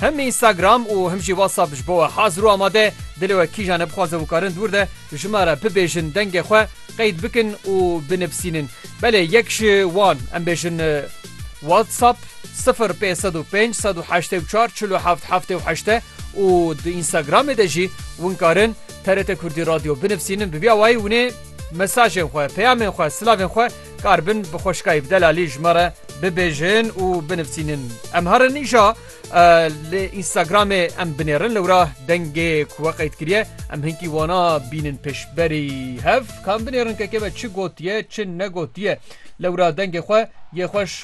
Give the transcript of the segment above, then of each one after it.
Him Instagram û him jî WhatsApp ji bo we hazir û amade ye. Dilê we kîjan e bixwaze wî karin dûr de ji me re bibêjin dengê xwe qeyd bikin û binivîsînin. Belê yek ji wan em bêjin WhatsApp sifir pênc sed û pênc sed û heştê û çar çil û heft heftê û heşt e û di Instagramê de jî win karin TRT Kurdî Radio binivîsînin bi vî awayî winê mesajên xwe, peyamên xwe, silavên xwe Kar bin bi xweşikayê bi delalî ji me re bibêjin û binivîsînin. Em herin îşa li Instagramê em binêrin lewra dengê ku we qeyd kiriye em hinkî wana bînin pêşberî hev kan binêrin keke me çi gotiye çi negotiye lewra dengê xwe yê xweş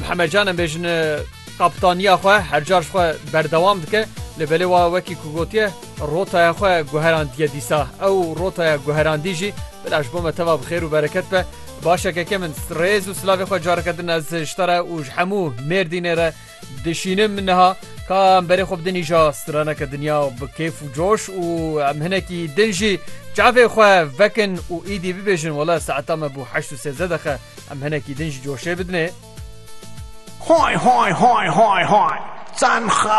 Mihemed Can em bêjin kaptaniya xwe her car ji xwe berdewam dike li belê wa wekî ku gotiye rotaya xwe guherandiye dîsa ew rotaya guherandî jî bila ji bo me teva bixêr û bereket be başekeke min rêz û silavê xwe careke din ez ji te re û ji hemû mêrdînê re Dişînim niha ka em berê xwe bidin îja straneke dinya bi kêf û coş û em hinekî din jî çavê xwe vekin û îdî bibêjin wele saeta me bû heşt û sêzdeh deqe em hinekî din jî coşê bidinê. Hay hay hay hay hay! Çend